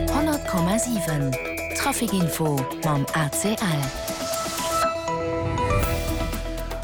100,7 Trafic-Info mam ACL.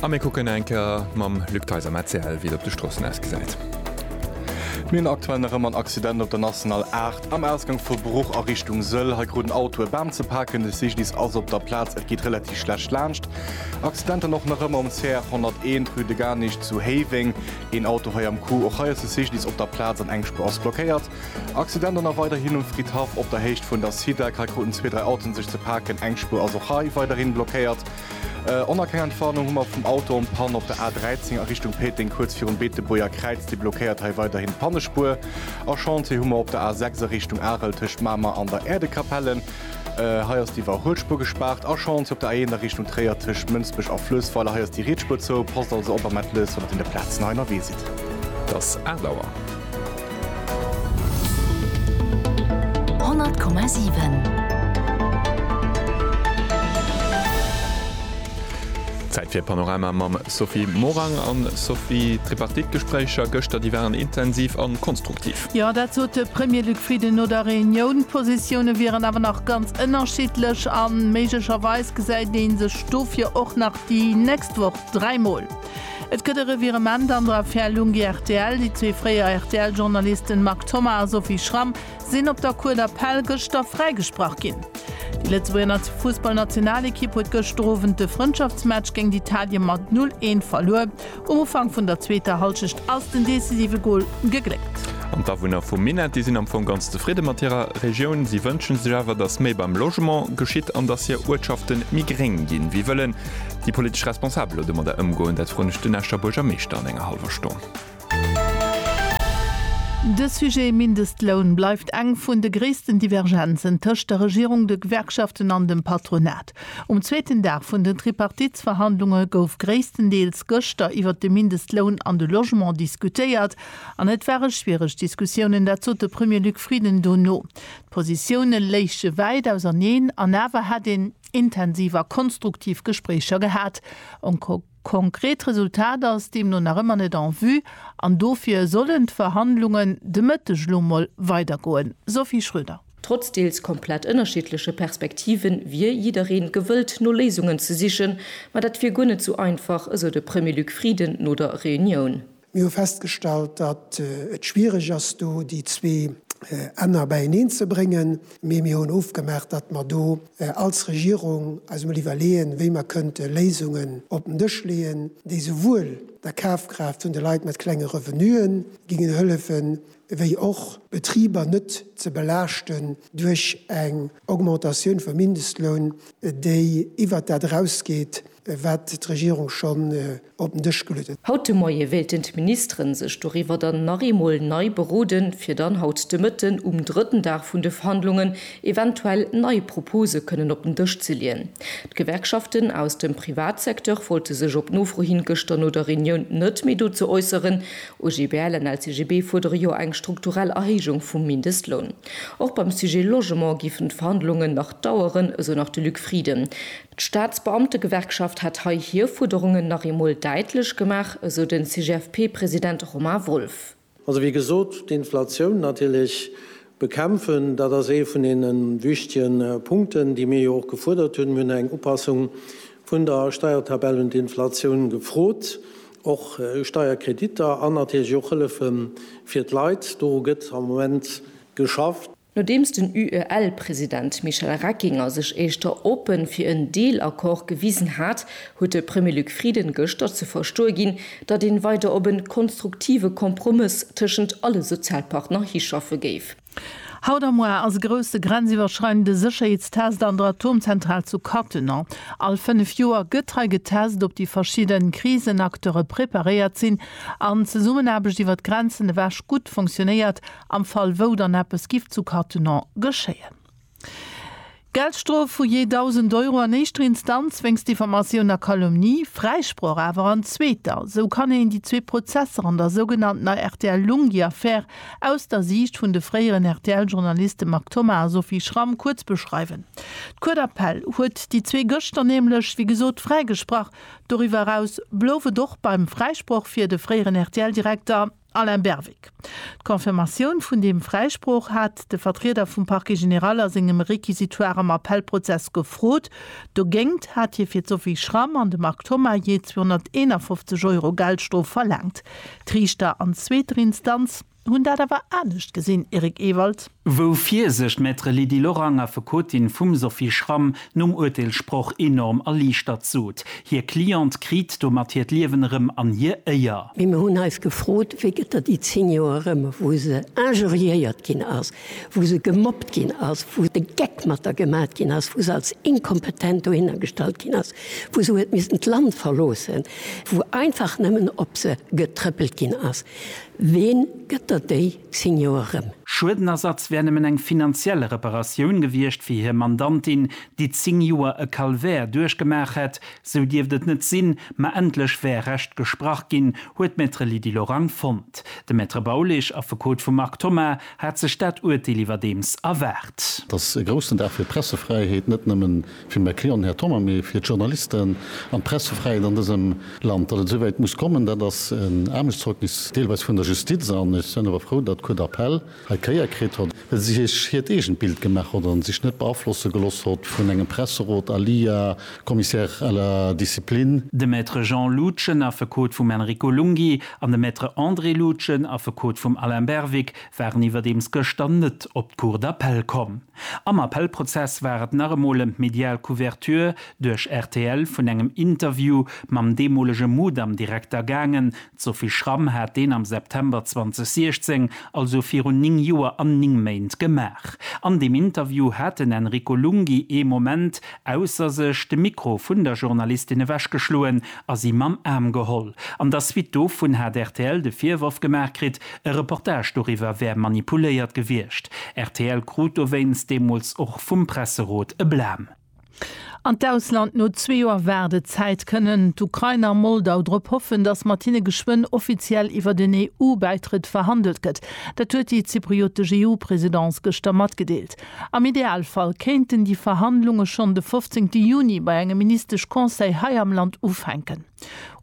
A mir kucken eng Kéier mam Luc Theis am ACL, wéi et op de Stroossen ausgesäit. Mir hunn aktuell nach ëmmer en Accident op der National 8 am Ausgang vu Bruch a Richtung Sëll. Hei krut en Auto e Bam ze paken. De Cyclist ass op der Plaz. Et geet relativ schlecht laanscht. Accidenten och nach ëmmer um CR 101, rue de Garnich zu Héiweng. Een Auto hei am Coup, och hei ass de CGDIS op der Plaz an eng Spuer ass blockéiert. Accident an a weiderhin um Fridhaff op der Héicht vun der SIDAC. Hei kruten zwee, dräi Autoen sech ze paken. Eng Spuer ass och hei weiderhin blockéiert. Oner keng Entwarnung hu mer vum Auto en panne op der A 13 a Richtung Péteng, kuerz virum Beetebuerger Kräiz. Déi blockéiert hei weiderhin d'Pannespuer. A Chantier hu mer op der A 6 a Richtung Arel tëscht Mamer an der Äerdekapelle. Hei ass d'Iwwerhuelspuer gespaart. Achance op der A1 a Richtung Tréier tëscht Mënsbech a Fluessweiler. Hei ass déi Rietspur zou. Passt also op a mellt lech, wann et un de Plazen hei ënnerwee sidd. Dass aacht Auer. 100,7. Zäit fir Panorama mam Sophie Morang an Sophie. D'Tripartite-Gespréicher gëschter, déi waren intensiv an konstruktiv. Jo, dat sot de Premier Luc Frieden no der Reunioun. D'Positioune wieren awer nach ganz ënnerschiddlech a méiglecherweis gesäit ee sech dofir och nach déi nächst Woch dräi Mol. Et gëtt e Revirement an der Affär Lunghi-RTL. Déi zwee fréier RTL-Journalisten Marc Thoma a Sophie Schramm sinn op der Cour d'appel gëschter fräigesprach ginn. Déi Lëtzebuerger Fussballnationalekipp huet gëschter Owend de Frëndschaftsmatch géint Italien mat 0, 1 verluer. Um Ufank vun der zweeter Hallschecht ass den decisive Gol gegléckt. An d'Awunner vu Minett, déi sinn am Fong ganz zefridde mat hirer Regioun. Si wënsche sech awer, datt méi beim Logement geschitt an datt hir Uertschafte méi gréng ginn. Wéi wëllen déi politesch Responsabel elo domadder ëmgoen? Dat froen ech den Escher Buergermeeschter an enger hallwer Stonn. De Sujet Mindestloun bleift eng vun de gréissten Divergenzen tëscht der Regierung, de Gewerkschaften an dem Patronat. Um zweeten Dag vun den Tripartitsverhandlunge gouf gréisstendeels gëschter iwwert de Mindestloun an de Logement diskutéiert. An et ware schwiereg Diskussiounen, dat sot de Premier Luc Frieden dono. D'Positioune léiche wäit auserneen an awer hätt een intensiv a konstruktiv Gespréicher gehat. Konkret Resultat ass deemno nach ëmmer net en vue an dofir sollen d'Verhandlungen de Mëtteg lo mol weidergoen. Sophie Schröder. Trotz deels komplett ënnerschiddleche Perspektive wier jidderee gewëllt no Léisungen ze sichen, ma dat wier guer net sou einfach, esou de Premier Luc Frieden no der Reunioun. Mir hu festgestallt, datt et schwiereg ass, do déi zwee Enner beieneen ze bréngen, mee mir hunn ofgemaach, datt mer do als Regierung eis emol iwwerleeën, wéi mer kënnte Léisungen op den Dësch leeën, déi souwuel der Kafkraaft vun de Leit mat klenge Revenuen géingen hëllefen, wéi och d'Betriber net ze belaaschten duerch eng Augmentatioun vum Mindestloun, déi iwwert dat erausgeet, wat d'Regierung schonn op den Dësch geluet huet. Haut de Moie wéilten d'Ministeren sech doriwwer dann nach eemol nei beroden, fir dann haut de Mëtten um drëtten Dag vun de Verhandlungen eventuell nei Propose kënnen op den Dësch ze leeën. D'Gewerkschaften aus dem Privatsecteur wollte sech op Nofro hin gëschter no der Reunioun net méi dozou äusseren. OGBL an LCGB fuerdere jo eng strukturell Erhéijung vum Mindestloun. Och beim Sujet Logement géifen d'Verhandlungen nach daueren, esou nach de Luc Frieden. D'Staatsbeamtegewerkschaft hätt hei hir Fuerderungen nach eemol däitlech gemaach, esou de CGFP-President Romain Wolff. Also wéi gesot, d'Inflatioun natierlech bekämpfen, dat ass ee vun deene wichtige Punkten, déi mir jo och gefuerdert hunn. Mir hunn eng Upassung vun der Steiertabell un d'Inflatioun gefrot, och Steierkreditter an natierlech och Hëllefe fir d'Leit. Doru gëtt am Moment geschafft. Nodeems den UEL-President Michel Reckinger sech éischter oppe fir en Deelaccord gewisen hat, huet de Premier Luc Frieden gëschter ze verstoe ginn, datt een weider op en konstruktive Kompromëss tëschent alle Sozialpartner hischaffe géif. Haut a muar ass e grousse grenziwwerschreidende Sécherheetstest an der Atomzentral zu Cattenom. All 5 Joer gëtt hei getest, ob déi verschidde Krisenacteure preparéiert sinn an d'Zesummenaarbecht iwwer d'Grenzen ewech gutt funktionéiert Am Fall wou dann eppes giff zu Cattenom geschéien. Geldstrof vu jee 1.000 Euro an éischter Instanz wéinst Diffamatioun a Calomnie, Fräisproch awer an zweeter. Sou kann een déi zwee Prozesser an der sougenanntener RTL-Lunghi-Affär aus der Siicht vun de fréieren RTL-Journaliste Marc Thomas a Sophie Schramm kuerz beschreiwen. D'Cour d'appel huet déi zwee gëschter nämlech, wéi gesot, fräigesprach. Doriwwer eraus blouf et och beim Fräisproch fir de fréieren RTL-Direkter. Alain Berwick, D'Confirmatioun vun deem Fräisproch hat de Vertrieder vum Parquet général a sengem Réquisitoire am Appellprozess gefrot. Dogéngt hat hie fir d'Sophie Schramm an de Marc Thoma jee 251 Euro Geldstrof verlaangt. D'Riichter an zweeter Instanz hunn dat awer anescht gesinn, Eric Ewald. Wou fier sech d'Maître Lydie Lorang, Affekotin vum Sophie Schramm, nom Urteelssproch enorm erliichtert sot. Hir Cliente kriit domat hiert Liewen erëm an hir Éier. Mee mir hunn eis gefrot, wéi gëtt der déi 10 Joer erëm, wou se injuriéiert ginn ass, wou se gemobbt ginn ass, wou de Geck mat der gemat ginn ass, wou se als inkompetent dohinner gestallt ginn ass, wou se huet missen d'Land verloossen, wou einfach nëmmen op se getrëppelt ginn ass. Ween gëtt der déi? 10 Joer rëm. Schuedenersatz wär nëmmen eng finanziell Reparatioun gewiescht fir hir Mandantin, déi 10 Joer e Calvaire duerchgemaach hätt. Sou dierft et net sinn, ma endlech wär Recht gesprach ginn, huet d'Maître Lydie Lorang fonnt. De Maître Baulig, Affekot vum Marc Thoma, hat sech dat Urteel iwwerdeems erwaart. Dass e groussen Dag fir d'Pressefräiheet net nëmmen Fir Macron, Här Thoma, mee fir d'Journalisten an d'Pressefräiheet an dësem Land. Datt et esou wäit muss kommen, dat ass en Aarmechtszeugnis deelweis vun der Justiz. An ech sen awer frou, datt d'Cour d'appel hei Kéier kritt hott, well si sech hiert eegent Bild gemaach hott an sech net beaflosse geloss hott vun engem Presserot à lia Commissaire à la discipline. De Maître Jean Loutgen, Affekot vum Enrico Lunghi, an de Maître André Loutgen, Affekot vum Alain Berwick, waren iwwerdeems gëschter net op d'Cour d'appel komm. Am Appellprozess war et nach emol ëm d'medial Couverture duerch rtl vun engem Interview mam deemolege Mudam-Direkter gaangen. D'Sophie Schramm hat deen am September 2016, also virun 9 Joer an 9 Méint, gemaach. An deem Interview hat den Enrico Lunghi ee Moment ausser sech, de Mikro vun der Journalistin ewechgeschloen a si mam Aarm geholl. An der Suite dovun hat rtl de Virworf gemaach kritt, E Reportage doriwwer wär manipuléiert gewiescht. Rtl krut dowéinst deemools och vum Presserot e Blam. An d'Ausland, No zwee Joer Waardezäit kënnen d'Ukrainer a Moldau drop hoffen, datt mat hinne geschwënn offiziell iwwer den EU-Bäitrëtt verhandelt gëtt. Dat huet déi zypriotesch EU-Presidence gëschter matgedeelt. Am Idealfall kéinten déi Verhandlunge schonn de 15 Juni bei engem Ministesch-Conseil hei am Land ufänken.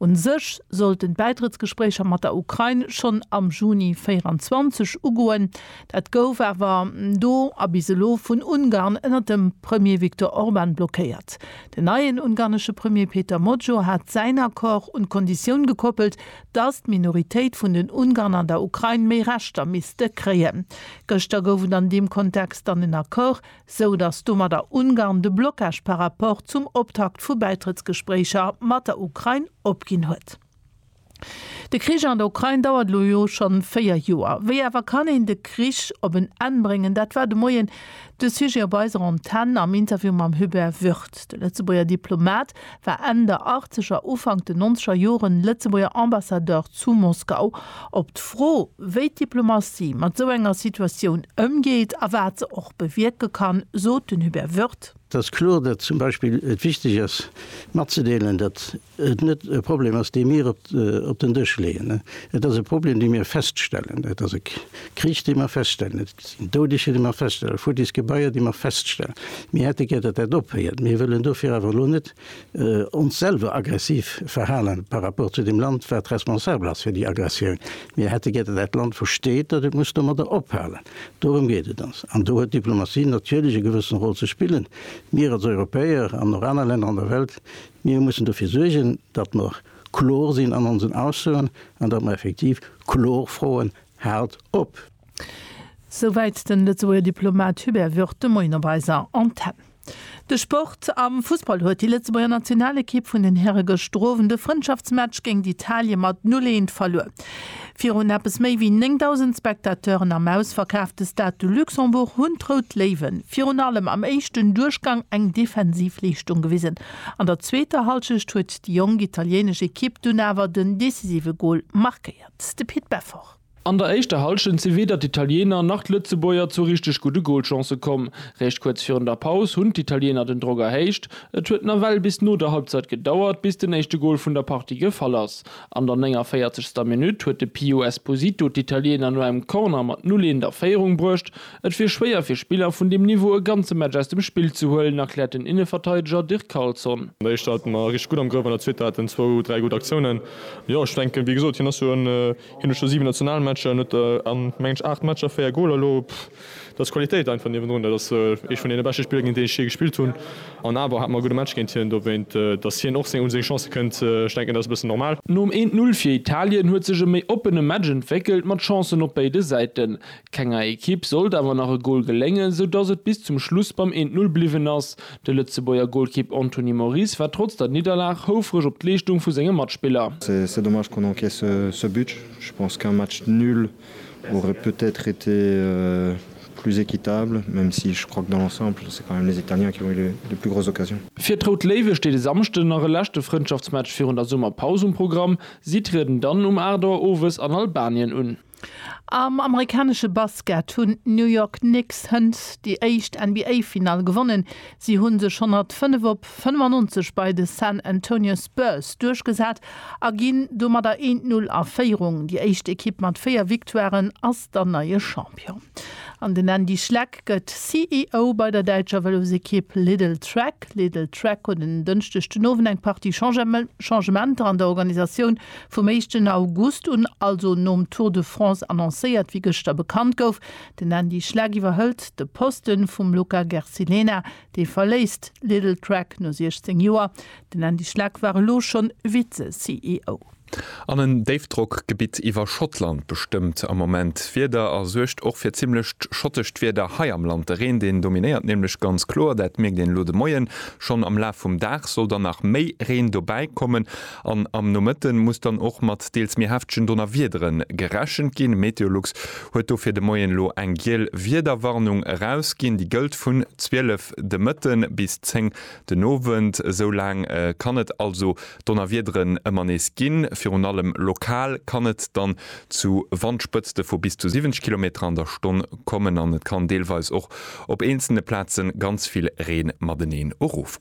Un sech sollten d'Bäitrëttsgespréicher mat der Ukrain schonn am Juni 2024 ugoen. Dat gouf awer do a bis elo vun Ungarn ënner dem Premier Viktor Orban blockéiert. Den neien ungarnesche Premier Péter Mojó hat säin Accord un d'Konditioun gekoppelt, datt d'Minoritéit vun den Ungarn an der Ukrain méi Rechter misste kréien. Gëschter gouf et an deem Kontext dann en Accord sou datt domadder Ungarn de Blockage par rapport zum Optakt vu Bäitrëttsgespréicher mat der Ukrain opginn huet. De Krich an der Ukrain dauert elo jo scho véier Joer. Wéi awer kann een de Krich op en Enn bréngen? Dat war de Moien de Sujet op eiser Antenn am Interview mam Hubert Würth. De Lëtzebuerger Diplomat war Enn der Achtzeger, Ufank de Nonzeger Joren Lëtzebuerger Ambassadeur zu Moskau. Op d'Fro, wéi d'Diplomatie mat esou enger Situatioun ëmgeet a wat se och bewierke kann, sot den Hubert Wirth. Et ass kloer, datt zum Beispill et wichteg ass matzedeelen, datt et net e Problem ass, dee mir op den Dësch leeën. Et ass e Problem, dee mir feststellen. Et ass e Krich, dee mir feststellen. sinn Doudeger, déi mer feststellen, futtis Gebaier, déi mer feststellen. Mir hätte gär, datt dat ophéiert. Mir wëllen dofir awer elo net ons selwer aggressiv verhalen par rapport zu deem Land, wat responsabel ass fir déi Aggressioun. Mir hätte gär, datt dat Land versteet, datt et muss domadder ophalen. Dorëm geet et ons. An do huet d'Diplomatie natierlech e gewëssen Rôle ze spillen. Mir als Europäer an och aner Länner an der Welt, mir mussen dofir suergen, datt mer kloer sinn an onsen Aussoen an datt mer effektiv kloer froen, Haalt op! Souwäit den Lëtzebuerger Diplomat Hubert Würth de Moien op eiser Antenn. De Sport, Am Fussball huet déi Lëtzebuerger Nationalekipp vun den Häre gëschter Owend e Frëndschaftsmatch géint Italien mat 0, 1 verluer. Virun eppes méi wéi 9.000 Spectateuren am ausverkaafte Stade de Luxembourg hunn d'Rout Léiwen virun allem am éischten Duerchgang eng defensiv Leeschtung gewisen. An der zweeter Hallschecht huet déi jonk italienesch Ekipp dunn awer den decisive Gol markéiert. De Pit Beffort. An der éischter Hallschent si weder d'Italiener nach d'Lëtzebuerger zu richteg gudde Golchancë komm. Réischt kuerz virun der Paus hunn d'Italiener den Drock erhéicht. Et huet nawell bis no der Halbzeit gedauert, bis den éischte Gol vun der Partie gefall ass. An der 49. ster Minutt huet de Pio Esposito d'Italiener no engem Corner mat 0, 1 a Féierung bruecht. Et wier schwéier fir Spiller vun deem Niveau e ganze Match aus dem Spill ze huelen, erkläert den Inneverteideger Dirk Carlson. An der éischter hate mer richteg gutt am Grëff, an der zweeter haten zwou, dräi gutt Aktiounen. Jo, ech denken, wéi gesot, hien ass jo en Hien huet scho 7 Nationalmatcher, hien huet a mengen ech 8 Matcher 4 Goler. Lo dat ass Qualitéit einfach niewendrun. Dat ass ee vun deene beschte Spiller géint deen ech jee gespillt hunn. An awer hate mer e gudde Match géint hien. Dowéint, datt hien och un seng Chancë kënnt, ech denken dat ass e bëssen normal. Nom 1, 0 fir Italien huet sech e méi oppene Match entwéckelt mat Chancen op béide Säiten. Kenger Ekipp sollt awer nach e Gol geléngen, sou datt et bis zum Schluss beim 1, 0 bliwwen ass. De Lëtzebuerger Golkipp Anthony Moris war trotz der Nidderlag houfreg op d'Leeschtung vu senge Matspiller. C'est dommage qu'on encaisse ce but, je pense qu'un match nul aurait peut-être été plus équitable, même si je crois que dans l'ensemble c'est quand même les Italiens qui ont eu les plus grosses occasions. Fir d'Rout Léiwe steet e Samschden nach e leschte Frëndschaftsmatch virun der Summerpaus um Programm. Si trieden dann um 8 Auer owes an Albanien un. Am amerikanesche Basket hunn d'New York Knicks hënt déi éischt NBA-Finall gewonnen. Si hu sech 105 op 95 bei de San Antonio Spurs duerchgesat a ginn domadder 1 Null a Féierung. Déi éischt Ekipp mat 4 Victoiren ass dann neie Champion. An den Andy Schleck gëtt CEO bei der däitscher Vëlosekipp Lidl Trek. Lidl Trek huet en Dënschdeg den Owend eng Partie Changementer an der Organisatioun Vum éischten August un, also nom Tour de France annoncéiert, wéi gëschter bekannt gouf. Den Andy Schleck iwwerhëlt de Poste vum Luca Gersilena. Dee verléisst Lidl Trek no 16 Joer. Den Andy Schleck war elo schonn Vize-CEO. An en Déifdrockgebitt iwwer Schottland bestëmmt am Moment d'Wieder a suergt och fir zimmlecht schottescht Wieder hei am Land. De Reen, deen dominéiert nämlech ganz kloer. Dat mierkt een elo de Moien schonn. Am Laf vum Dag soll dann nach méi Reen dobäikommen. An am Nomëtten muss dann och mat deels méi heftegen Donnerwiederen gerechent ginn. Meteolux huet dofir de Moien elo eng giel Wiederwarnung erausginn. Déi gëllt vun 12 de Mëtten bis 10 den Owend. Esou laang kann et also Donnerwiederen ëmmer nees ginn. Virun allem lokal kann et dann zu Wandspëtzte vu bis zu 70 Kilometer an der Stonn kommen an et kann deelweis och op eenzelne Plaze ganz vill Reen mateneen erofgoen.